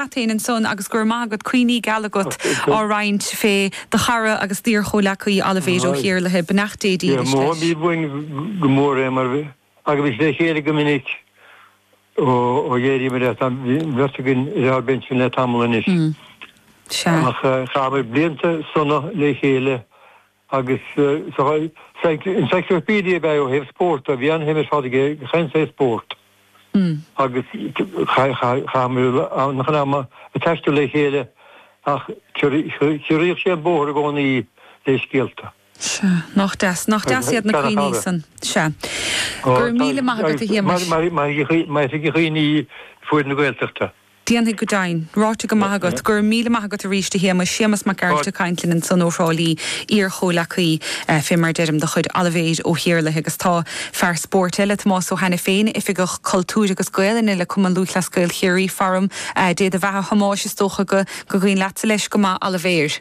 Cathain ansan agus go raibh maith agat, cuimhní geala agat á roinnt fé do chara agus d'iar-chomhleacaí Oilibhéar Ó hIarlaithe. Beannacht Dé dílis leis. Bhí uainn go mór é mar thagaimís le chéile go minic ó dh'éiríomair as. Tá an bheirt againn ar ár bpinsean le tamall anois ach chaitheamar blianta sona le chéile Agus saghas encyclopedia ab ea é ó thaobh spórt de. Bhí an-shuim ar fad aige i ngach aon saghas spórt. Agus chaitheamar an-chuid ama ag taisteal le chéile ach chiorraíodh sé an bóthar i gcónaí le scéalta. Sea. Nach deas. Nach deas iad na cuimhní ar fad san. Sea. Go raibh míle maith agat a Shéamais. Mairfidh a chuimhne ar fuaid na Gaeltachta. Déanfaidh, go deimhin. Ráite go maith agat. Go raibh míle maith agat arís, a Shéamais. Séamas Mac Gearailt ag caint linn ansan ó Thrá Lí, iar-chomhleacaí, fé mar deirim, de chuid Oilibhéar Ó hIarlaithe. Agus tá fear spóirt eile, Tomás Ó hAiniféin, Oifigeach Cultúir agus Gaelainne le Cumann Lúthchleas Gael Chiarraí, faram. Dé do bheatha a Thomáis, is dócha go gur cuimhin leatsa leis go maith, Oilibhéar.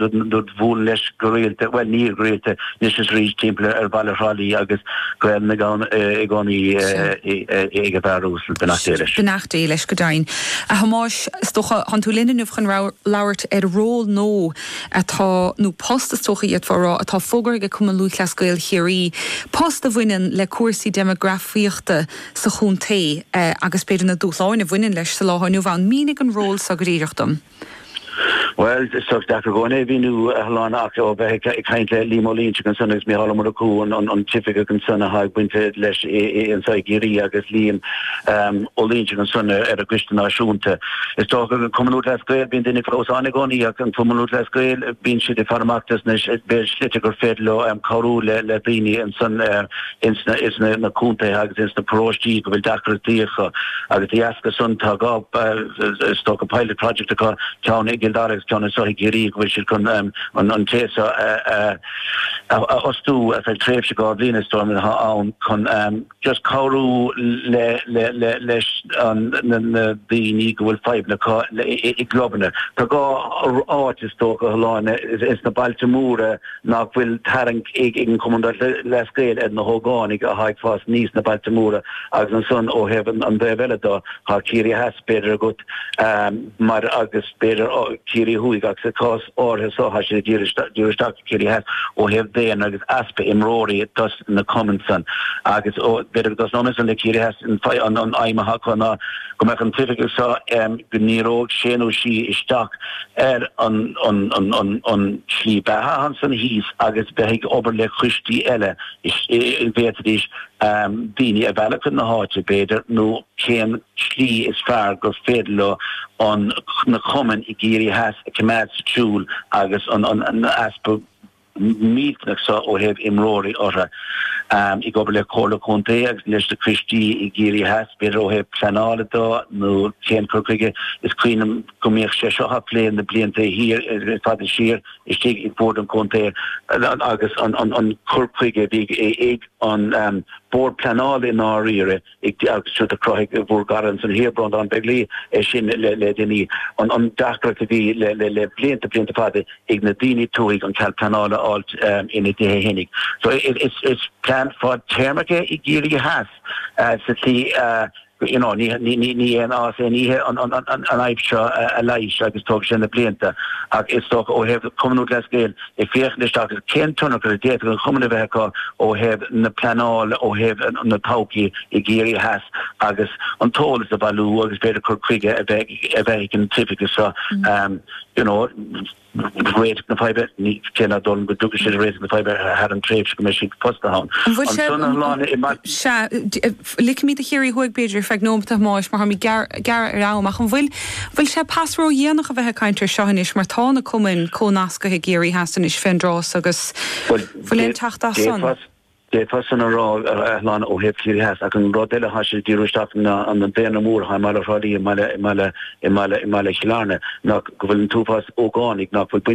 rud bhuailinn leis go rialta, bhuel ní go rialta anois is arís, timpeall ar Bhaile Thrá Lí agus Gaelainn i gcónaí ag an bhfear uasal, beannacht Dé leis. Beannacht Dé leis go deimhin. A Thomáis, is dócha, thán tú linn inniu chun labhairt ar ról nó atá, nó post is dócha d'fhéadfá a rá, atá fógartha ag Cumann Lúthchleas Gael Chiarraí, post a bhaineann le cúrsaí deimeagrafaíochta sa chontae agus b'fhéidir na dúshláin a bhaineann leis sa lá atá inniu ann. Mínigh an ról seo go díreach dom. Bhuel, is deacair go deimhin é a mhíniú a Shláine, ach ó bheith ag caint le Liam Ó Loinsigh ansan agus Micheál Ó Murchú, an t-oifigeach ansan atá ag baint leis anso i gCiarraí agus Liam Ó Loinsigh ansan ar an gcoiste náisiúnta. Is dócha an Cumann Lúthchleas Gael, bíonn daoine ag clamhsán i gcónaí ach an Cumann Lúthchleas Gael, bíonn siad ag faire amach dos na slite gur féidir leo cabhrú le daoine ansan. ins na contaetha agus ins na paróistí go bhfuil deacrachtaí acu agus dá dheasca san tá dhá is dócha pilot project acu, ceann i gCill Dara agus ceann anso i gCiarraí go bhfuil siad chun an té seo a fhostú ar feadh tréimhse dhá bhliain is dóigh atá ann chun just cabhrú leis na daoine go bhfuil fadhbanna acu i gclubanna. Tá dhá áit is dócha a Shláine, ins na bailte móra, nach bhfuil tarraingt ag an gCumann Lúthchleas Gael ar na hógánaigh atá ag fás aníos sna bailte móra agus ansan ó thaobh an taobh eile do, tá Ciarraí Theas b'fhéidir agat mar agus b'fhéidir Ciarraí Thuaidh ach sa chás áirithe so tá siad ag díriú isteach ar Ciarraí Theas ó thaobh daonra agus easpa imreoirí dos na cumainn san agus b'fhéidir dos na ionaid san le Ciarraí Theas an fhadhb an aidhm atá acu ná go mbeadh an t-oifigeach seo, go ndíreodh sé nó sí isteach ar an slí beatha atá ansan thíos agus bheith ag obair le coistí eile, bhféadfaidís daoine a mhealladh chun na háite b'fhéidir nó cén tslí is fearr gur féidir leo na cumainn i gCiarraí Theas a choimeád sa tsiúl agus an easpa millteanach seo ó thaobh imreoirí orthu. Ag obair le Comhairle Contae agus leis na coistí i gCiarraí Theas, b'fhéidir ó thaobh pleanála de nó cén cur chuige, is cuimhin liom go mbíodh sé seo á phlé na blianta thiar fada siar istigh ag bord an chontae agus an cur chuige a bhí ag An Bord Pleanála i ndáiríre, ag dea agus sure do chruthaigh bhur gcara ansan thiar Breanndán Begley é sin le le déanaí. An an deacracht a bhí le le le blianta blianta fada ag na daoine tuaithe an cead pleanála a fháilt ina dtithe féinig. So is is is plean fad téarmach é i gCiarraí Theas sa tslí a you know ní ní ní ní aon fhás aon oíche an an an an fhadhb seo a leighis agus tógfaidh sé na blianta ach is dócha ó thaobh Cumann Lúthchleas Gael Ag féachaint isteach ar cén tionchar a d'fhéadfadh an cumann a bheith acu ó thaobh na pleanála, ó thaobh na todhchaí i gCiarraí Theas agus an t-eolas a bhailiú agus b'fhéidir cur chuige a bheith ag an t-oifigeach seo you know réiteach na faidhbe, cé nach dóigh liom go dtiocfaidh siad ar réiteach na faidhbe thar an tréimhse go mbeidh siad fostaithe ann. An bhfuil sé, sea, Ligfimid do Chiarraí Thuaidh b'fhéidir ar feadh nóimeat a Thomáis mar táimid gearr ar am ach an bhfuil bhfuil sé pas ródhéanach a bheith ag caint air seo anois mar tá na cumainn comhnasctha i gCiarraí Theas anois fén dtráth so agus bhfuil aon teacht as san? D'fhéadfá san a rá a Shláine ó thaobh Chiarraí Theas ach an rud eile atá sé ag díriú isteach air ná an daonra mór atá i mbaile Thrá Lí i mbaile i mbaile i mbaile i mbaile Chill Airne ná go bhfuil an t-uafás ógánaigh ná fuil baint